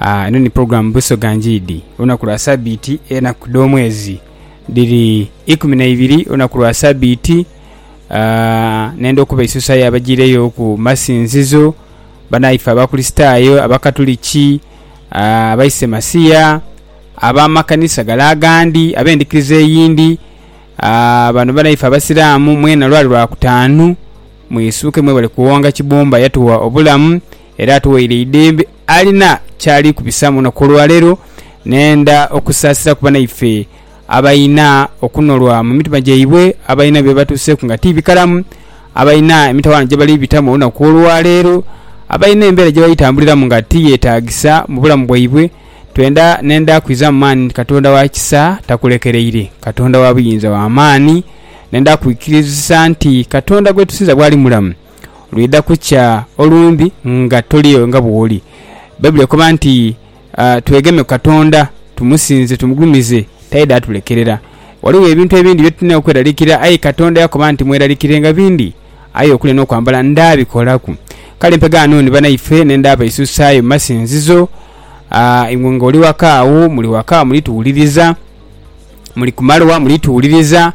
Aa, eno ni pulogulaamu Busoga Njiidi. Olunaku lwa Sabiiti, enaku dh'omwezi dhiri ikumi na ibiri olunaku lwa Sabiiti. Aa, nenda okuba isusa y'abajiireyo ku masinzizo, banaife Abakurisitaayo, Abakatuliki, aa, Abaisemasia, ab'amakanisa gale agandi, ab'endhikiriza eyindi. Aa, bano banaife Abasiraamu, mwena lwali Lwakutaanu. Mwisuuke, mwebale kuwonga Kibumba yatuwa obulamu, era atughaire eidembe alina kyali kubisamu olunaku olwaleero nenda okusaasira ku banaife abalina okunolwa mu mitima gyaibwe abalina byebatuuseeku nga ti bikalamu abalina emitawaana gyebali bitamu olunaku olwaleero abalina embeera gyebali tambuliramu nga ti yetaagisa mu bulamu bwaibwe twenda nenda kwizamu maani nti Katonda wa kisa takulekereire Katonda wa buyinza wa maani nenda kwikirizisa nti Katonda gwetusinza bwali mulamu. lwidha kukya olumbe nga toliyo nga bwoli. Baibuli ekoba nti, Twegeme ku Katonda, tumusinze, tumugulumize, taidha atulekerera. Ghaligho ebintu ebindi bye tulina okweralikira, aye Katonda yakoba nti, Mweralikirenga bindi, aye okulya n'okwambala ndaabikolaku. Kale mpegaano ni banaife n'enda abaisuusaayo mu masinzizo. Iwe ng'oli waka agho, muli waka, muli tuwuliriza. muli ku malwa muli tuwuliriza,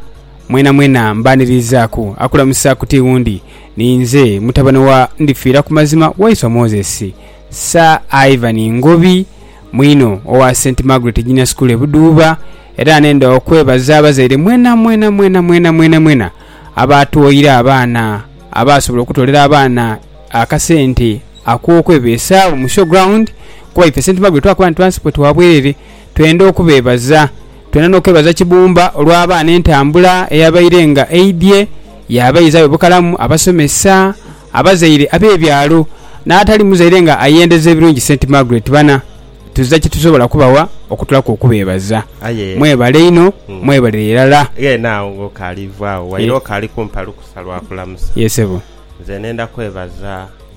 mwenamwena mbaanirizaaku. Akulamusa ku ti wundi, ni nze mutabane wa Ndifiira ku mazima waiswa Moses. Sir Ivan Ngobi, mwine owa St Margaret Junior School e Buduuba, era nenda okwebaza abazaire mwenamwena mwenamwena mwenamwena abaatwoire abaana, abaasobola okutoolera abaana akasente ak'okwebeesaawo mu show ground kuba ife St Margaret twakoba nti twansi bwe twa bwerere. twenda okubeebaza. Twenda n'okwebaza Kibumba olw'abaana entambula eyabaire nga eidhye yaabaizagho e Bukalamu, abasomesa, abazaire ab'ebyalo n'atali muzaire nga ayendeza ebirungi St. Margaret bana tuzira kye tusobola kubawa okutulaku okubeebaza. Aye. Mwebale inho, mwebalire irala. Ghene agho ng'okaali vaagho, waire okaali kumpa lukusa lwa kulamusa. Ye sebo. Nze nenda kwebaza.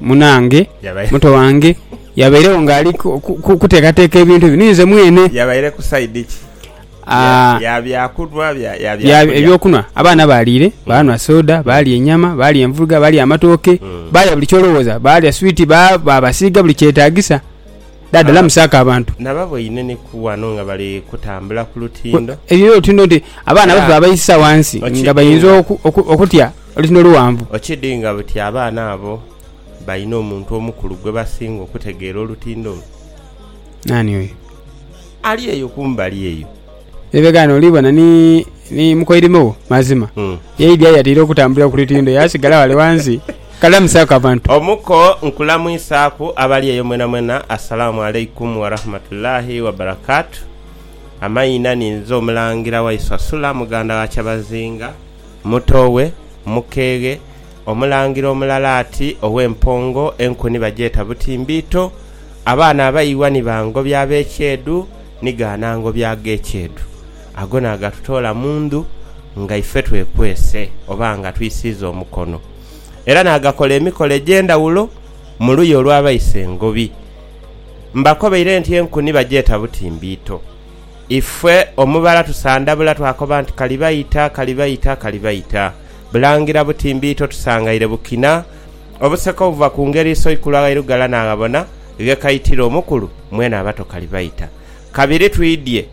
Munaange, muto wange yabairegho ng'ali kuteekateeka ebintu ebyo, ni nze mwene. Yabaire ku saidi ki? Ya byakunhwa, ya byakulya? Ebyokunhwa. Abaana baaliire, baanhwa soda, baalya enyama, baalya envuruga, baalya amatooke, baalya buli ky'olowooza. Baalya switi, baabasiiga buli kyetaagisa. Dhaadha lamusaako abantu. Nababoine ni ku wano nga bali kutambula ku lutindo. Ebyo by'olutindo nti abaana baffe baabaisisa wansi nga bainza okutya. Oluti no luwanvu. Okidinga buti abaana abo balina omuntu omukulu gwe basinga okutegeera olutindo olwo? Nani oyo? Ali eyo kumbali eyo. Ebe ghano oli bona ni, ni mukoirime wo. Mazima. Mm. Yaidhi aye yatera okutambulira ku lutindo, yaasigala ghale ghansi. Kalamusaaku abantu. Omuko, Nkulamwisaaku abali eyo mwenamwena. Assalaamu Alaikum Warahmatullaahi Wabarakatuh. Amaina, Ninze Omulangira Waiswa Sula, Muganda wa Kyabazinga. Muto we, mukeeghe, omulangira omulala ati ow'empongo enku ni bagyeta butimbiito, abaana abaiwa ni ba ngobi ab'ekyeedhu ni gaana ngobi ag'ekyeedhu. Ago naagatutoola mu ndhu nga ife twekwese oba nga twisiiza omukono. Era naagakola emikolo egy'endhawulo mu luya olw'abaisa engobi. Mbakobaire nti enku ni bagyeta butimbiito. Ife omubala tusandabula twakoba nti kali baita, kali baita, kali baita. Bulangira buti mbiito tusangaire bukina. Obuseka obuva ku ngeri Isoikulu aghairughala naaghabona ghekaitira omukulu mwene abato kali baita. Kabiri twidhie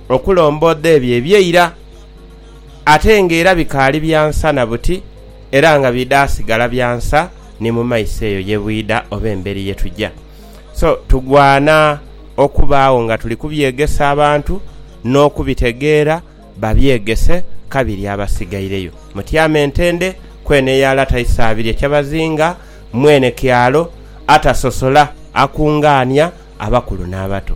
okulomboodha ebyo eby'eira ate ng'era bikaali bya nsa na buti era nga bidha sigala bya nsa ni mu maiso eyo ye bwidha oba emberi ye tuja. So tugwana okubaagho nga tuli kubyegesa abantu n'okubitegeera, babyegese kabiri abasigaireyo. Mutyame entende ku eno eya lata isaabiri ekyabazinga mwene kyalo atasosola akungaania abakulu n'abato.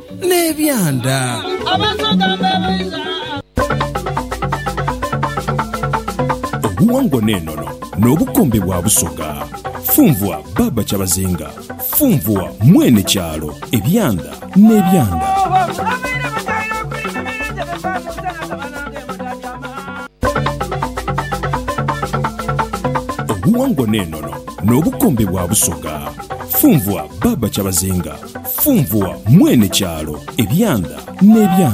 n'ebyanda. Obuwangwa n'enono n'obukombe bwa Busoga. Funvua Baaba Kyabazinga, funvua mwene kyalo, ebyanda n'ebyanda. Obuwangwa n'enono n'obukombe bwa Busoga. Funvua Baba Kyabazinga. Funvua Mwene kyalo, ebyanda n'ebyanda.